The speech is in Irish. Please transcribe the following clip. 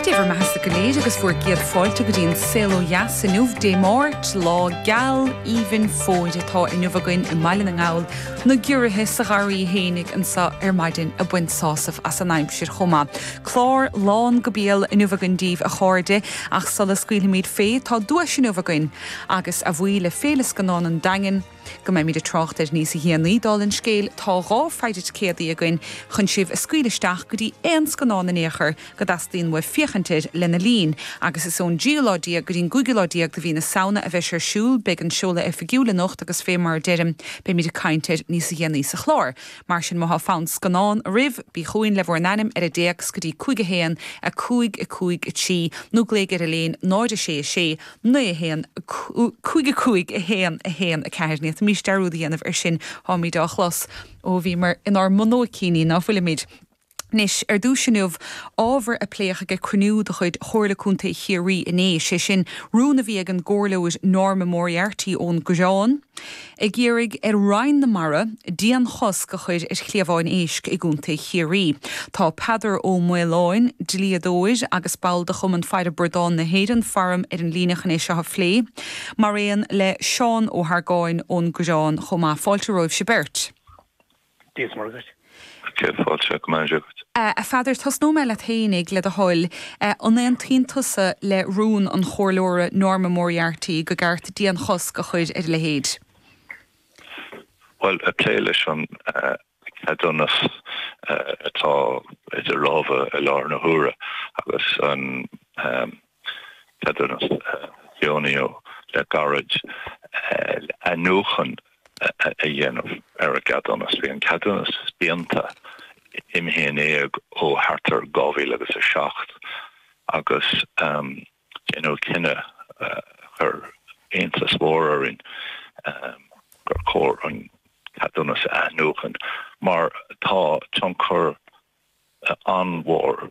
Dé bhur mbeathasa go léir agus bhur gcéad fáilte go dtí an Saol Ó Dheas inniu Dé Máirt, lá geal aoibhinn fómhair atá inniu againn i mBaile na nGall, na giorruithe sa gharraí fhéinig anseo ar maidin ag baint sásaimh as an aimsir chomh maith. Clár lán go béal inniu againn daoibh a chairde ach sula scaoilfimid fé tá duais inniu againn agus, a bhuí le Féile Scannán an Daingin, go mbeimid ag trácht air níos déanaí. Dála an scéil, tá dhá phéire ticéadaí againn chun sibh a scaoileadh isteach go dtí aon scannán in aon chor go dteastaíonn uaibh féachaint air lena linn, agus is ón dtríú lá déag go dtí an gcúigiú lá déag de mhí na Samhna a bheidh sé ar siúl. Beidh an seoladh oifigiúil anocht agus fé mar a deirim, beimid ag caint air níos déanaí sa chlár. Mar sin, má tá fonn scannán oraibh, bí chugainn le bhur n-ainm ar an dtéacs go dtí 51553 nó glaoigh ar Elaine, 0 6 6, 9, 1, 5, 5, 1, 1, 4 Ní haon mhaith dearúd a dhéanamh ar sin táimid á chlos ó bhíomar inár mbunóicíní, ná bhfuilimid? Anois, ar dtús inniu, ábhar a pléadh ag cruinniú de chuid Chomhairle Contae Chiarraí inné, sé sin rún a bhí ag an gcomhairleoir Norma Moriarty ón gCoireán, ag iarraidh ar Roinn na Mara dianchosc a chuir ar chliabháin éisc i gContae Chiarraí. Tá Peadar Ó Maolain, dlíodóir agus ball do Chumann Faire Bradán na hÉireann, Farm, ar an líne chun é seo a phlé, maraon le Seán Ó hArgáin ón gCoireán chomh maith. Fáilte romhaibhse beirt. Dia is Muire dhaoibh. Céad fáilte go raibh maith agat. A Pheadair, tosnóidh mé leat fhéinig, le do thoil. An aontaíonn tusa le rún an chomhairleora Norma Moriarty go gceart dianchosc a chuir ar a leithéid? Bhuel, ag plé leis an ceadúnas atá idir lámha i láthair na huaire agus an. Ceadúnas a deonaíodh le gairid, athnuachan a dhéanamh ar an gceadúnas. Bhí an ceadúnas féin imithe in éag ó thart ar 2007 agus déanadh cinneadh a chuir iontas mór orainn gur chóir an ceadúnas a athnuachan mar tá tionchar an-mhór,